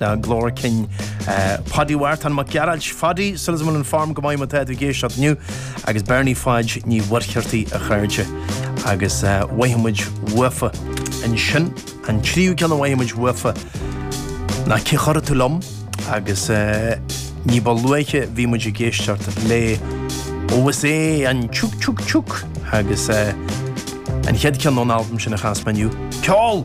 Ná glór cinn Páidí Mhárthain Mac Gearailt, Páidí, súil agam in form go maith má tá tú ag éisteacht inniu, agus Bernie Pháid Ní Mhuircheartaigh a chairde agus mhothaigh muid bhuafa ansin, an tríú ceann a mhothaigh muid bhuafa ná Cé Chuirfidh Tú Liom? agus ní ba luaithe bhí muid ag éisteacht le Ó is é an Tiúc Tiúc Tiúc agus an chéad cheann ón albam sin a chas mé inniu, Ceol!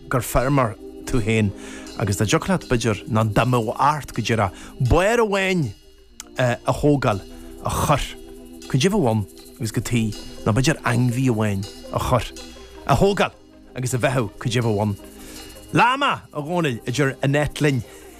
gur feirmeoir tú féin agus dá dtiocfadh leat b'fhéidir ná dá mbeadh ort go díreach barr amháin a thógáil a chur caidé a bheadh ann agus cad chuige ná b'fhéidir ainmhí amháin a chur a thógáil agus a bheathú caidé a bheadh ann. Láma, a Dhónaill, a deir Annette linn.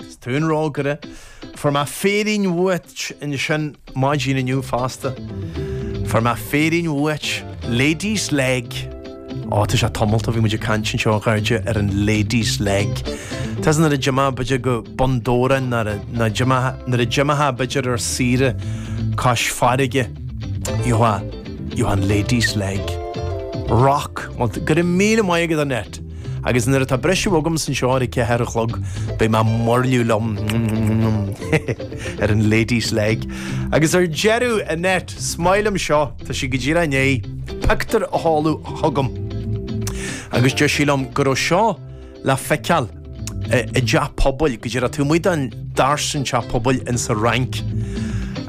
Is tú an rógaire. Fuair mé féirín uait ansin, maidin inniu fosta. Fuair mé féirín uait, Lady's Leg. Ó, tá sé tamallt, bhí muid ag caint anseo a chairde ar an Lady's Leg. Tá a fhios agat nuair a d'imítheá b'fhéidir go Bun Dobhráin, nuair a, nuair a d'imigh, nuair a d'imítheá b'fhéidir ar saoire cois farraige. Ió, ió an Lady's Leg. Rock. Go raibh míle maith agat, Annette. Agus nuair atá briseadh agam anseo ar a ceathair a chlog, beidh mé mairliú liom ar an Lady's Leg. Agus ar deireadh, Annette, is maith liom seo, tá sí go díreach i ndiaidh pictiúr a sheoladh chugam agus deir sí liom go raibh seo le feiceáil i dteach pobail go díreach taobh amuigh den doras in teach pobail ins an Fhrainc.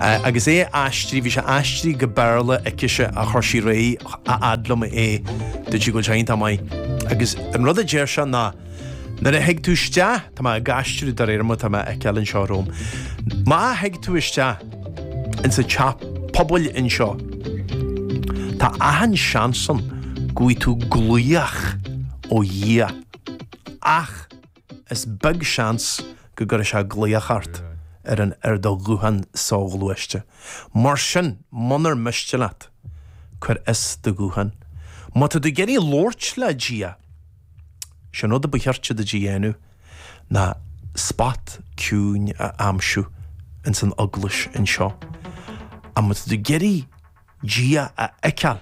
Agus é aistrithe, bhí sé aistrithe go Béarla aicise a chuir sí réidh a fhad liom é, dúirt sí go bhfuil sé iontach maith. Agus an rud a deir sé ná, nuair a thig tú isteach, tá mé ag aistriú de réir mar tá mé á fheiceáil anseo romham, má thig tú isteach insa teach pobail anseo, tá achan seans ann go bhfaighidh tú glaoch ó Dhia. Ach. is beag seans go gcuirfidh sé glaoch ort ar an ar do ghuthán soghluaiste. Mar sin, munar miste leat, cuir as do ghuthán. Má tá tú ag iarraidh labhairt le Dia, is é an rud a ba cheart duit a dhéanamh ná spot ciúin a aimsiú ins an eaglais anseo. Ach má tá tú ag iarraidh Dia a fheiceáil,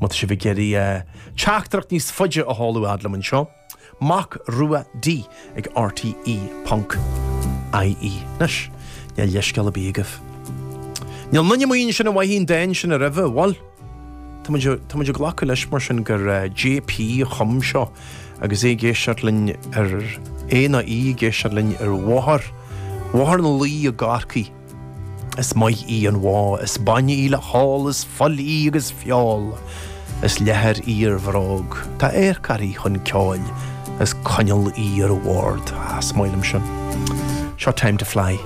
Má tá sibh ag iarraidh teachtaireacht níos faide a sheoladh a fhad liom anseo, Mac Rua D ag RTÉ ponc IE. Anois, níl leithscéal ar bith agaibh. Níl aon duine amuigh ansin a mhothaigh an dán sin aroimhe, bhail, tá muid, tá muid ag glacadh leis mar sin gur JP a chum seo agus é ag éisteacht linn ar, é ná í ag éisteacht linn ar bhóthar, Bhóthar na Laoi i gCorcaigh. Is maith í an bhó, is bainne í le hól, is fuil í agus feoil, is leathar í ar bhróg, tá adharc uirthi chun ceoil, is coinneal í ar bhord. Ah, is maith liom sin. Seo Time to Fly.